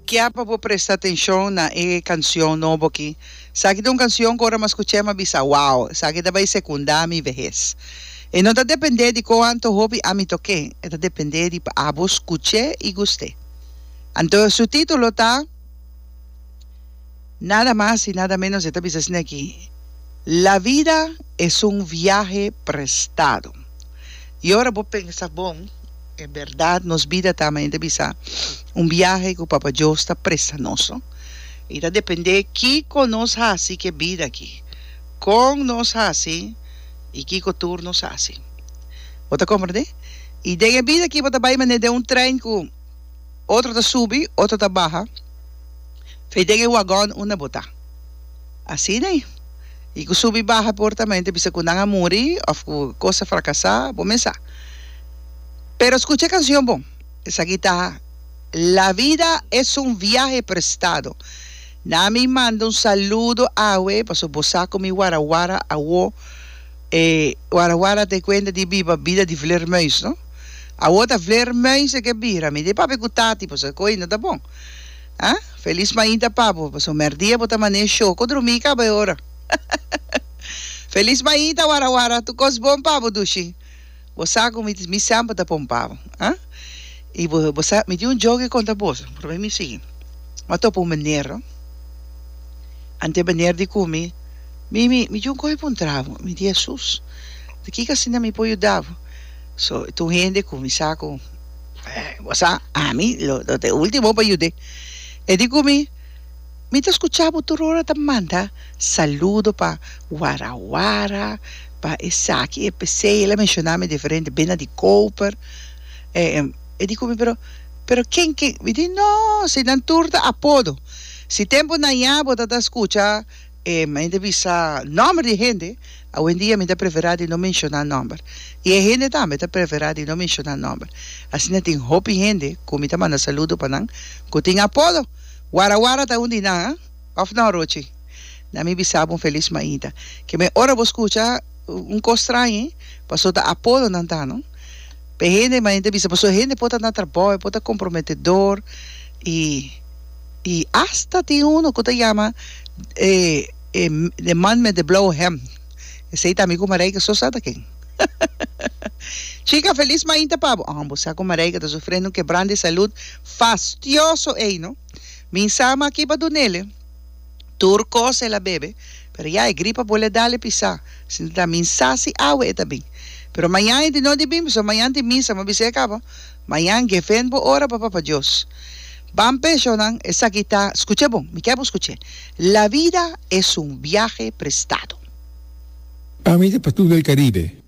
Kia pa bo presta atencion na e cancion nobo aki. Esaki ta un cancion cu ora mi a scucha mi a bisa, Wow! Esaki ta bay secunda mi vehez. E no ta depende di con anto hopi ami toke, e ta depende di paabo scuche y guste. Anto su titulo ta. Nada mas y nada menos e ta bisa asina aki, La vida es un viaje prestado. Y ora bo pensa bon, e berdad nos bida ta, men e ta bisa, un viaje cu Papa Dios ta presta nos, no? Y ta depende kico nos haci cu e bida aki, con nos haci y kico tur nos haci. Bo ta comprende? Y den e bida aki bo ta bay manera den un trein cu. otro ta subi, otro ta baha, fe den e wagòn unda bo ta. Asina i e ku subi baha por tamenti bisa ku nan a muri òf ku kos a frakasá, bo mensá. Pero skucha e kansion bon, esaki ta, La vida es un viaje prestado. Na mi manda un saludo awe, pasobra bo sa ku mi warawara awó. E wara wara ta e kuenta di biba bida di vleermuis no. Awor ta vleermuis e ke bira mi. Di papia ku tati pasobra ku ainda ta bon. Ha? Feliz mainta pa bo pasobra merdia bo ta mané e show. Ku drumí kaba e ora. Feliz mainta wara wara. Tur kos bon pa bo dushi. Bo sa ku mi mi semper ta pon pabo, ha? I bo bo sa mi tin un joke konta boso, probe mi sigui. Mi a topa un benero, anto e benero di ku mi, mi mi mi tin kohe pa un trabo, mi di Hesus, di kiko asina mi por yuda bo? So ta un hende ku mi sa ku, bo sa ami lo lo ta e ultimo pa yud'é, e di ku mi, Mi ta scucha bo tur ora ta manda saludo pa Wara Wara, pa esaki e pesey, el a menciona mi diferente bena di Koper, e di cu mi pero pero ken ken mi di no si nan tur ta apodo, si tempo nan ya bo ta ta scucha mente bisa nomber di hende awendia mi ta prefera di no menciona nomber y e hende tambe ta prefera di no menciona nomber asina tin hopi hende cu mi ta manda saludo pa nan cu tin apodo. Wara wara ta un di nan, a? Of no, Rochi? Na mi bisa bo un felis mainta. Ke me ora bo skucha un kos strañi, paso ta apodo nan ta, no? P'e hende, mainta bisa, paso e hende por ta na trabou, e por ta komprometedor, i i asta tin uno ku ta yama e e de man met de blou hèm. Esei ta mi ku Mareike so sa ta ken. Chika, felis mainta pa bo. Ahan bo sa ku Mareike ta sufriendo un kebrant di salud, Fastioso ey no. Min sama aki pa dunele tur cos el a bebe pero ya e gripa bole a dale pisa sinta ta min sa si awe e ta bin pero mayan e di no di bin pasobra mayan tin misa mi a bisa e caba mayan gefend bo ora bo papa Dios ban peshonan esaki ta scuche bon mi kier bo scuche la vida es un viahe prestado. Ami ta pa tur del Caribe.